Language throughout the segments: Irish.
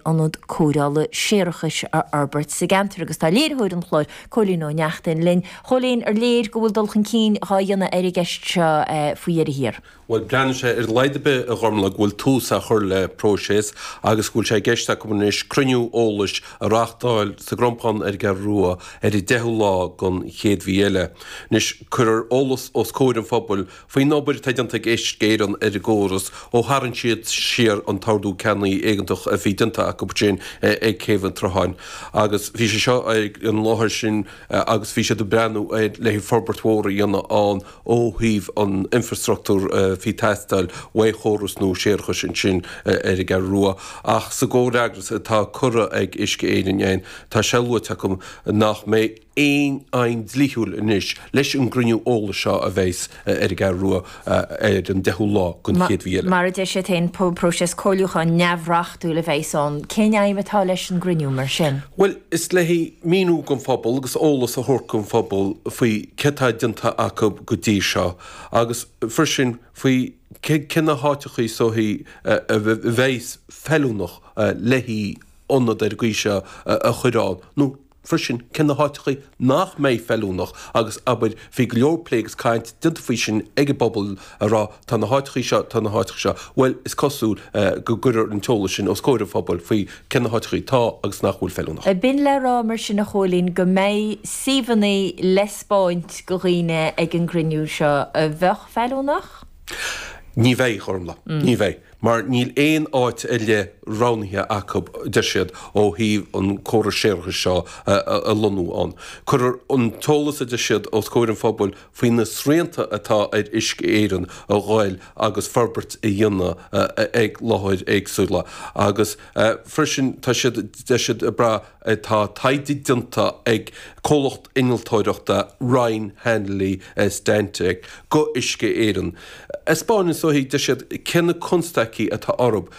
ionad cóireála séarachais a fhorbairt sa gceantar agus tá léiritheoir an chláir, Cóilín Ó Neachtain, linn. A Chóilín, ar léir go bhfuil dul chun cinn dhá dhéanamh ar an gceist seo faoi dheireadh thiar? Bhuel, breathnaíonn sé ar a laghad ar bith, a Ghormlaith, go bhfuil tús á chur le próiseas agus go bhfuil sé i gceist acu anois cruinniú eolais a reáchtáil sa gCrompán ar an gCeathrú Rua ar an deichiú lá den chéad mhí eile. Anois, cuirfear eolas os comhair an phobail Faoin obair atá déanta ag Uisce Éireann ar an gcóras ó tharraing siad siar an t-ordú ceannaí éigeantach a bhí déanta acu ansin ag Céibh an tSrutháin agus bhí sé seo ag an láthair sin agus bhí siad ag breathnú le forbairt mhór a dhéanamh ann ó thaobh an infrastructúr a bhí ag teastáil ó chóras nua séarachais ansin ar an gCeathrú Rua ach sa gcomhfhreagras atá curtha ag Uisce Éireann ann tá sé luaite acu nach mbeidh aon aidhm dlíthiúil anois leis an gcruinniú eolais seo a bheas ar an gCeathrú Rua ar an deichiú lá den chéad mhí eile. Mar a deir siad féin, próiseas comhairliúcháin neamhreachtúil a bheas ann. Cén aidhm atá leis an gcruinniú mar sin? Bhuel, is le míniú don phobal agus eolas a thabhairt don phobal faoi céard atá déanta acu go dtí seo agus freisin faoi cé na háiteachaí is dóichí a bheas feiliúnach le hionad dhá leithéid seo a chur ann nó freisin cé na háiteachaí nach mbeidh feiliúnach agus abair bhí go leor plé agus caint déanta faoi sin ag an bpobal ag rá tá na háiteachaí seo tá na háiteacha seo. Bhuel is cosúil go gcuirfear an t-eolas sin os comhair an phobail faoi cé na háiteachaí atá agus nach bhfuil feiliúnach. Ab in le rá mar sin a Chóilín go mbeidh suíomhanna le 'spáint go dhaoine ag an gcruinniú seo a bheadh feiliúnach? Ní bheidh a Ghormlaith. Ní bheidh. mar níl aon áit ar leith roghnaithe acu, deir siad, ó thaobh an córas séarachais seo a lonnú ann. Cuirfear an t-eolas, a deir siad, os comhair an phobail faoi na srianta atá ar Uisce Éireann a dhul agus forbairt a dhéanamh ag láithreacha éagsúla agus freisin tá siad, deir siad, ag breath Tá taighde déanta ag comhlacht innealtóireachta Ryan Hanley Stantec go Uisce Éireann. A spáineanns, is dóichí, deir siad cé na constaicí atá orthub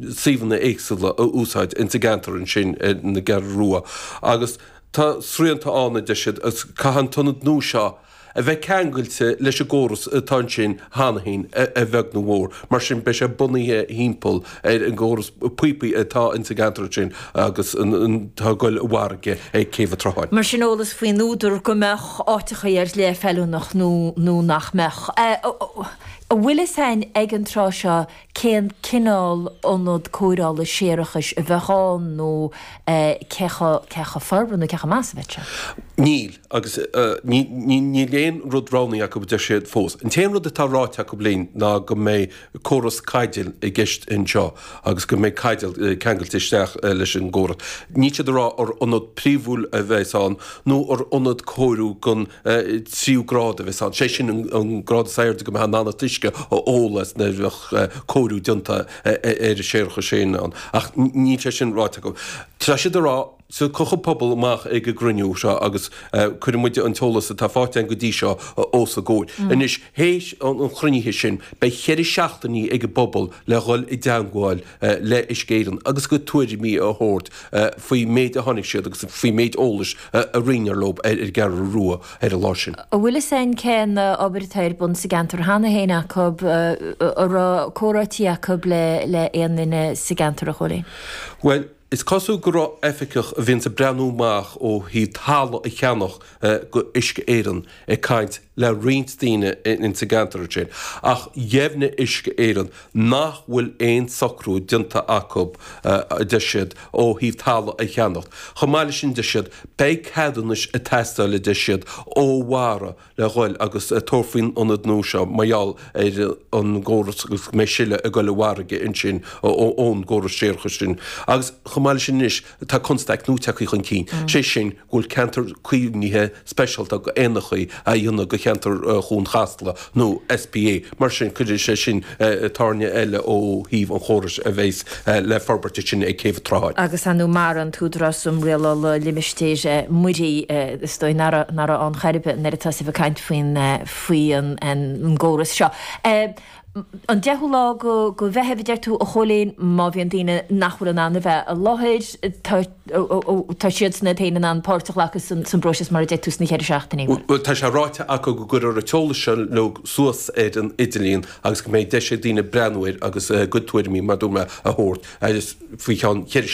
suíomhanna éagsúla a úsáid ins an gceantar ansin ar an gCeathrú Rua agus tá srianta ann a deir siad caithfidh an t-ionad nua seo a a bheith ceangailte leis an gcóras atá ansin cheana féin, a bheag nó mhór. Mar sin, beidh sé bunaithe thimpeall ar an gcóras píopaí atá ins an gceantar ansin agus atá ag goil i bhfarraige ag Céibh a' tSrutháin. Mar sin, eolas faoin údar go mbeadh áiteachaí ar leith feiliúnach nó nach mbeadh. An bhfuil fhios a'inn ag an tráth seo cén cineál ionad cóireála séarachais a bheadh ann nó cé chomh forbartha nó cé chomh maith is a bheadh sé. Níl, agus níl aon rud roghnaithe acu a deir siad fós. An t-aon rud atá ráite acu linn ná go mbeidh córas caidéil i gceist anseo agus go mbeidh caidéal ceangailte isteach leis an gcóras. Níl siad ag rá an ionad príomhúil a bheas ann nó an ionad cóiriú den tríú grád a bheas ann, sé sin an grád is airde go mbeadh in ann an t-uisce a ól as nuair a bheadh cóiriú déanta ar an séarachas sin ann. Ach níl sé sin ráite acu. Tá siad ag rá tiocfaidh an pobal amach ag an gcruinniú seo agus cuirfidh muid an t-eolas atá faighte againn go dtí seo os a gcomhair. Anois. Théis an chruinnithe sin beidh cheithre seachtainí ag an bpobal le dhul i dteangmháil le Uisce Éireann agus a gcuid tuairimí a thabhairt faoin méid a chonaic siad agus faoin méid eolais a roinneadh leo ar an gCeathrú Rua ar an lá sin. An bhfuil fhios a'inn cén obair atá ar bun sa gceantar cheana fhéin acu, an raibh comhráití acu le aon duine sa gceantar, a Chóilín? Bhuel, Is cosúil go raibh oificeach a bhíonns ag breathnú amach ó thaobh talamh a cheannacht go Uisce Éireann ag caint le roinnt daoine ins an gceantar ansin ach dheimhnigh Uisce Éireann nach bhfuil aon socrú déanta acu a deir siad ó thaobh talamh a cheannacht. Chomh maith le sin deir siad beidh ceadúnais ag teastáil a deir siad ó Mhara le ghoil agus tabhairt faoin ionad nua seo mar gheall ar an gcóras agus go mbeidh sileadh ag goil i bhfarraige ansin ón gcóras séarachais sin agus chomh maith le sin anois tá constaic nua tagtha chun cinn, sé sin go bhfuil ceantar caomhnaithe speisialta go éanacha á dhéanamh go cheantar Chuan Chasla nó SPA. Mar sin, cuirfidh sé sin tairne eile ó thaobh an chórais a bheas le forbairt ansin ag Céibh an tSrutháin. Agus ar ndóigh MARA, an tÚdarás um Rialála Limistéir Mhuirí, is dóigh ná raibh ann chor ar bith nuair a tosaíodh ag caint faoin gcóras seo. An deichiú lá go Mheitheamh a deir tú a Chóilín, má bhíonn daoine nach bhfuil in ann a bheith i láthair, tá. tá siadsan iad féin in ann páirt a ghlacadh san bpróiseas mar a deir tú sna cheithre seachtainí. Bhuel tá sé ráite acu go gcuirfear an t-eolas seo uilig suas ar an idirlíon agus go mbeidh deis ag daoine breathnú air agus a gcuid tuairimí, mar a dúirt mé, a thabhairt faoi cheann cheithre